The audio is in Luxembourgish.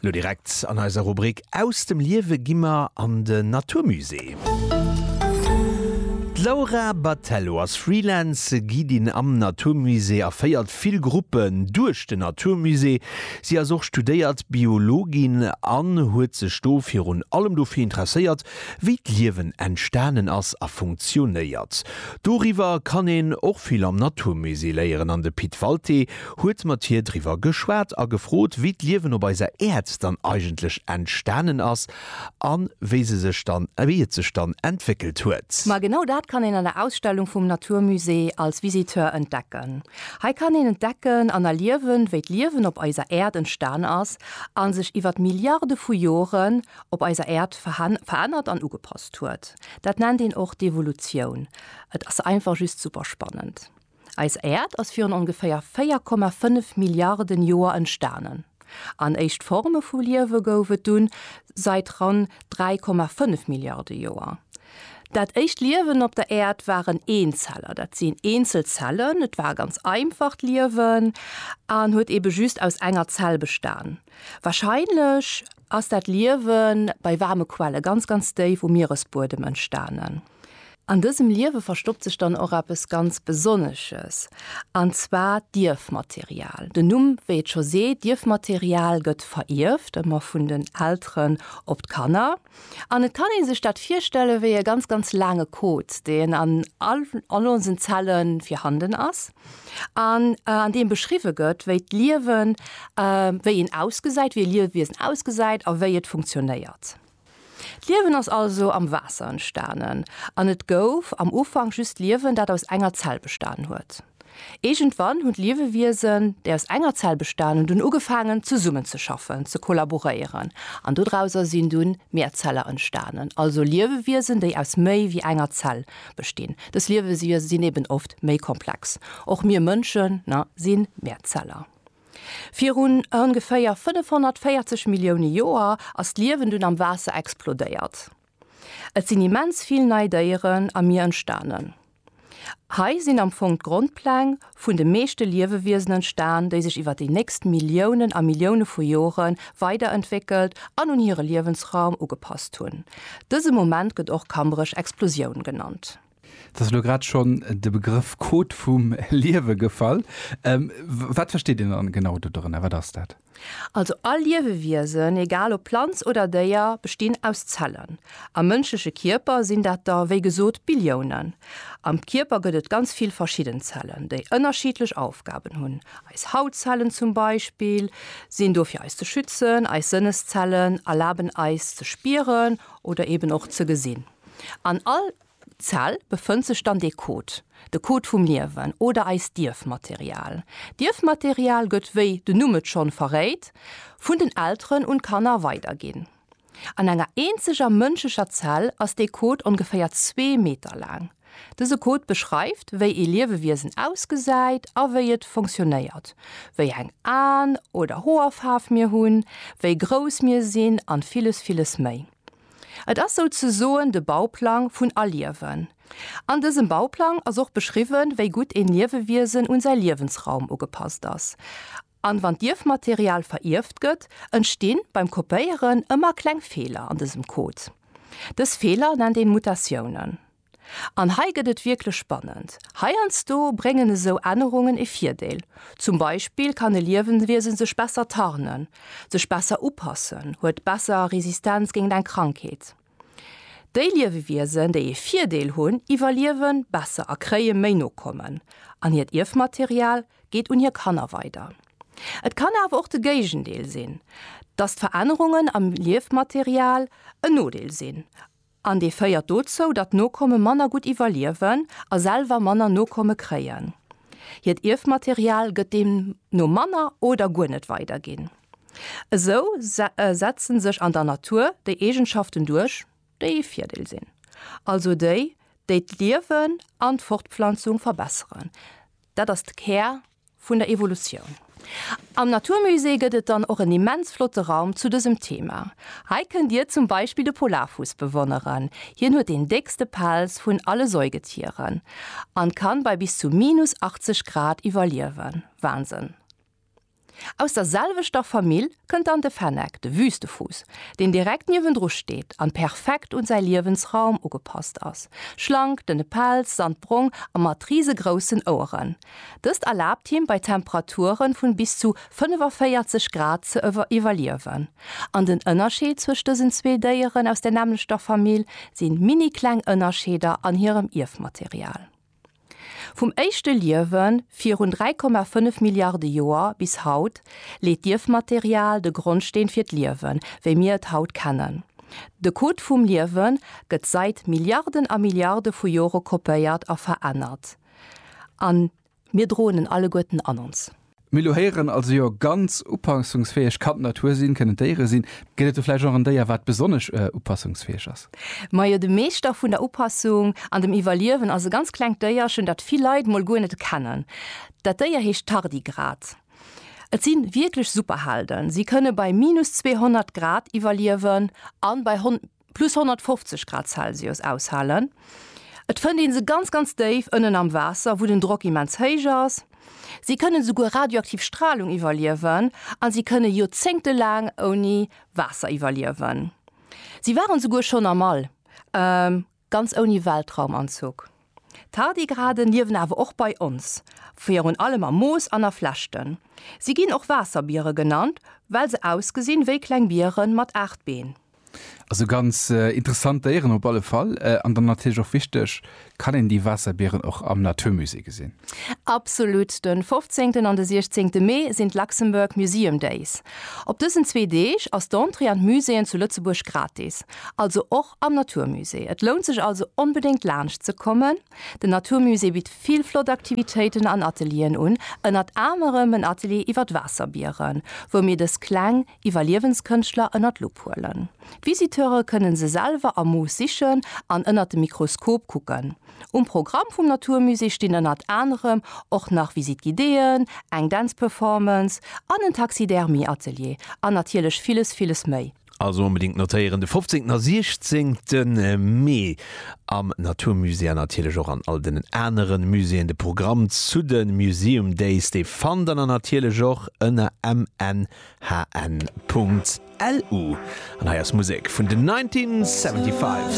Lo direkt an eiser Rubrik Aus dem Liewe gi mer an den Natur Musée. D'Laura Battello ass Freelance Guidin am Natur Musée a féiert vill Gruppen duerch den Natur Musée. Si ass och studéiert Biologin an huet sech do virun allem dofir interesséiert, wéi d'Liewen entstanen ass a funktionéiert. Doriwwer kann een och vill am Natur Musée léieren an de Pit Walté huet mat hir driwwer geschwat a gefrot, wéi d'Liewen op eiser Äerd dann eigentlech entstanen ass a wéi se sech dann, wéi et sech dann entwéckelt huet. Ma genau dat kann een an der Ausstellung vum Natur Musée als Visiteur entdecken. Hei kann een entdecken an erliewen, wéi d'Liewen op eiser Äerd entstan ass a sech iwwert Milliarde vu Joren op eiser Äerd verännert an ugepasst huet. Dat nennt een och d'Evolutioun. Et ass einfach just super spannend. Eis Äerd ass virun ongeféier 4,5 Milliarden Joer entstanen, an éischt Forme vu Liewe gouf et dunn sait ran 3,5 Milliarde Joer. Dat éischt Liewen op der Äerd waren Eenzeller, dat sinn eenzel Zellen. Et war ganz einfacht Liewen an huet ebe just aus enger Zell bestan. Warscheinlech ass dat Liewe bei waarme Quelle ganz, ganz déif um Mieresbuedem entstanen. An dësem Liewe verstoppt sech dann och eppes ganz Besonnesches, an zwar d'Ierfmaterial. Den Numm, wéi et scho seet, d'Ierfmaterial gëtt verierft, ëmmer vun den Elteren op d'Kanner. An et kann ee sech dat virstelle wéi e ganz, ganz laange Code, deen an all onsen Zelle virhanden ass, an an deem beschriwwe gëtt, wéi d'Liewen, wéi een ausgesäit, wéi e Liewiesen ausgesäit a wéi et funktionéiert. D'Liewen ass also am Waasser entstanen an et gouf am Ufank just Liewen, dat aus enger Zell bestan huet. Iergendwann hunn d'Liewewiesen, déi aus enger Zell bestanen hunn, ugefaangen zesummenzeschaffen, ze kollaboréieren an dodrauser sinn dunn mär Zeller entstanen, also Liewewiesen, déi aus méi wéi enger Zell bestinn. Dës Liewewiese sinn eben oft méi komplex. Och mir Mënschen sinn Mehrzeller. Virun ongeféier 540 Millioune Joer ass d'Liewen dunn am Waasser explodéiert. Et sinn immens vill nei Déieren am Mier entstanen. Hei sinn am Fong d'Grondpläng vun de meeschte Liewewiesen entstan, déi sech iwwer déi nächst Milliounen a Millioune vu Jore weiderentwéckelt an un hire Liewensraum ugepasst hunn. Dëse Moment gëtt och Kambrech-Explosioun genannt. Et ass elo grad schonn de Begrëff Code vum Liewe gefall. Wat versteet een dann genau do dorënner? Wat ass dat? Also all Liewewiesen, egal ob Planz oder Déier, bestinn aus Zellen. Am mënschleche Kierper sinn dat der, wéi gesot, Billiounen. Am Kierper gëtt et ganz vill verschidden Zellen, déi ënnerschiddlech Aufgaben hunn. Eis Hautzellen zum Beispill sinn do fir eis ze schützen, eis Sënneszellen erlaben eis ze spieren oder eben och ze gesinn. An all. Zell befënnt sech dann dee Code, de Code vum Liewen oder eist Dierfmaterial. Dierfmaterial gëtt, wéi den Numm et schonn verréit, vun den Elteren un d'Kanner weiderginn. An enger eenzeger mënschlecher Zell ass dee Code ongeféier zwee Meter laang. Dëse Code beschreift, wéi ee Liewewiesen ausgesäit a wéi et funktionéiert, wéi eng Aen oder Hoerfaarf mir hunn, wéi grouss mir sinn an villes, villes méi. Et ass souzesoen de Bauplang vun Aliewen. An dësem Bauplang ass och beschriwwen, wéi gutt een Liewewiesen un säi Liewensraum ugepasst ass. An wann d'Ierfmaterial verierft gëtt, entstinn beim Kopéieren ëmmer kleng Feeler an dësem Code. Dës Feeler nennt een Mutatiounen. An hei gëtt et wierklech spannend. Heiansdo bréngen esou Ännerungen e Virdeel. Zum Beispill kann e Liewenwiesen sech besser tarnen, sech besser upassen, huet besser Resistenz géingt eng Krankheet. Déi Liewewiesen, déi e Virdeel hunn, iwwerliewe besser a kréie méi Nokommen. An hiert Ierfmaterial geet un hir Kanner weider. Et kann awer och de Géigendeel sinn, dass d'Verännerungen am Ierfmaterial en Nodeel sinn An dee féiert dozou, datt Nokomme manner gutt iwwerliewen a selwer manner Nokomme kréien. Hiert Ierfmaterial gëtt deemno manner oder guer net weiderginn. Esou setzen sech an der Natur déi Eegenschaften duerch, déi ee Virdeel sinn, also déi, déi d'Liewen an d'Fortpflanzung verbesseren. Dat ass de Kär Vun der Evolutioun. Am Naturmusée gëtt et dann och en immens flotte Raum zu dësem Thema. Hei kënnt Dir zum Beispill de Polarfuuss bewonneren. Hien huet deen déckste Pelz vun alle Säugetieren an kann bei bis zu minus 80 Grad iwwerliewen. Wahnsinn! Aus der selwechter Famill kënnt dann de Fenneck, de Wüstefuuss, deen direkt niewendru steet an perfekt un säi Liewensraum ugepasst ass. Schlank, dënne Pelz, sandbrong a mat risegroussen Oueren. Dëst erlaabt him bei Temperaturen vun bis zu 45 Grad ze iwwerliewen. An den Ënnerscheed zwëscht dësen zwee Déieren aus der nämmlechter Famill sinn minikleng Ënnerscheeder an hirem Ierfmaterial. Vum éischte Liewen virun 3,5 Milliarde Joer bis haut leet d'Ierfmaterial de Grondsteen fir d'Liewen, wéi mir et haut kennen. De Code vum Liewen gëtt sait Milliarden a Milliarde vu Jore kopéiert a verännert. an mir droen en alleguerten an ons. Mir elo héieren also jo ganz upassungsfäeg kann d'Natur sinn, kënnen d'Déiere sinn. Gëtt et do vläicht och en Déier, wat besonnesch upassungsfäeg ass? Majo, de Meeschter vun der Upassung an dem Iwwerliewen ass e ganz klengt Déierchen, dat vill Leit mol guer net kennen. Dat Déier heescht Tardigrad. Et si wierklech Superhelden. Si kënne bei minus 200 Grad iwwerliewen an bei. plus 150 Grad Celsius aushalen. Et fënnt ee se ganz, ganz déif ënnen am Waasser, wou den Drock immens héich ass. Si kënnen esouguer radioaktiv Stralung iwwerliewen a si kënne joerzéngtelaang ouni Waasser iwwerliewen. Si waren esouguer schonn am All, ganz ouni Weltraumanzuch. D'Tardigraden liewen awer och bei ons, virun allem am Moos an a Flechten. Si ginn och Waasserbiere genannt, well se ausgesinn wéi kleng Biere mat aacht Been. Also ganz interessant Déieren op alle Fall. An dann natierlech och wichteg, Kann een déi Waasserbieren och am Naturmusée gesinn? Absolut! De 15. an de 16. Mee sinn d'Luxembourg Museum Days. Op dësen zwee Deeg ass d'Entrée an d'Muséeën zu Lëtzebuerg gratis. Also och am Naturmusée. Et lount sech also onbedéngt laanscht ze kommen. Den Naturmusée bitt vill flott Aktivitéiten an Atelieren un, ënnert anerem en Atelier iwwer d'Waasserbieren, wou mir dës kleng Iwwerliewenskënschtler ënnert d'Lupp huelen. D'Visiteure kënne se selwer am Moos sichen an ënnert dem Mikroskop kucken. Um Programm vum Naturmusée stinn ënnert anerem och nach Visite Guidéeën, eng Dance Performance an en Taxidermie-Atelier an natierlech villes, villes méi. Also onbedingt notéieren de 15. a 16. Mee am Naturmusée an natierlech och an all den aneren Muséeën. De Programm zu de Museum Days dee fannt der natierlech och ënner mnhn.lu. An hei ass Musek vun den 1975.